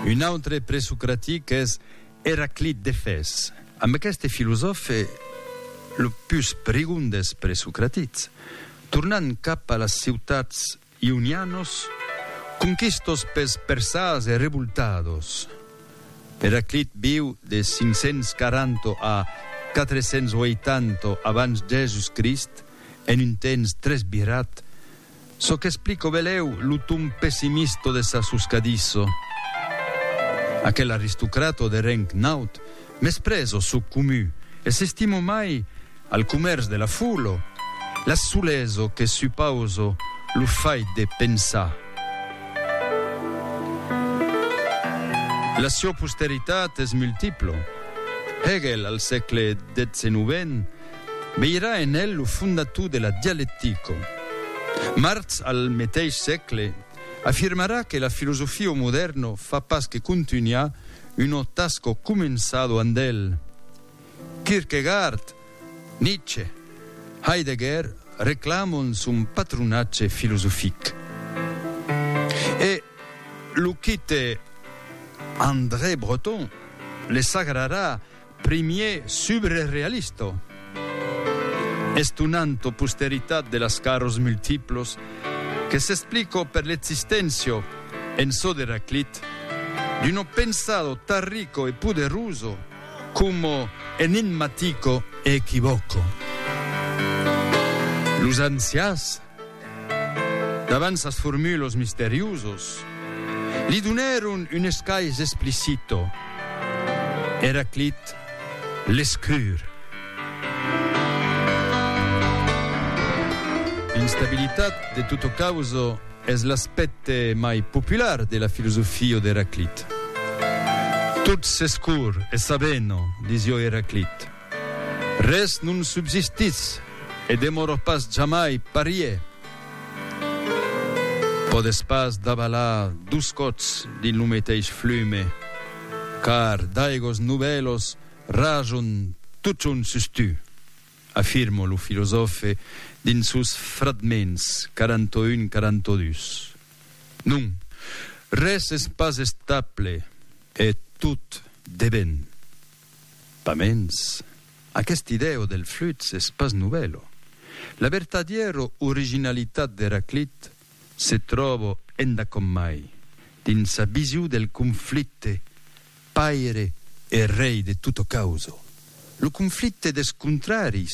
Un autre presocratic es Eraclit d'Efès. Amb aqueste filosòfe, lo pus prigon des presocratics, tornant cap a las ciutats ionianos conquistos pels persas e revoltados. Eraclit viu de 540 a 480 abans Jèsus Crist, en un temps tres virat Çò qu'explico belèu lo ton pessimista de sa soscadissa. Aquel aristocrata de reng naut mespresa o çò comu e s'estima mai al comèrç de la fola, la solesa que supausa lo fait de pensar. La siá posteritat es multipla. Hegel al sègle xix-xix. Veirà en el lo fondator de la dialectico. Marx al meteis sègle afirmarà que la filosofia o modèrno fa pas que contunhar uno tasco començado and el. Kierkegaard, Nietzsche, Heidegger reclamon son patronatge filosofic. E lo quite André Breton le sagrarà Primier subre realista, estonanta posteritat de las caras multiplas que s'explica per l'existéncia, en çò d'Heraclit, d'una pensada tan rica e poderosa coma enigmatica e equivòca. Los ancians, Davant sas formulos misteriosos, li donèron un escais explicito, Eraclit l'escrur. L'instabilitat de tota causa es l'aspècte mai popular de la filosofia d'Eraclit. Tot s'escur e s'avena, disió Eraclit. Res non subsistís, e demoror pas jamai parier. Pòdes pas davalar dos còps dins lo meteis flume, car d'aigos novèlos rajon totjorn sus tu, afirma lo filosòfe dins sos fragments 41, 42. Non, res es pas estable e tot devèn. Pamens, aqueste idèo del flux es pas novèlo. La vertadièro originalitat d'Eraclit se tròbo endacòmai dins sa vision del conflicte paire e rei de tutto causo, lo conflicte des contraris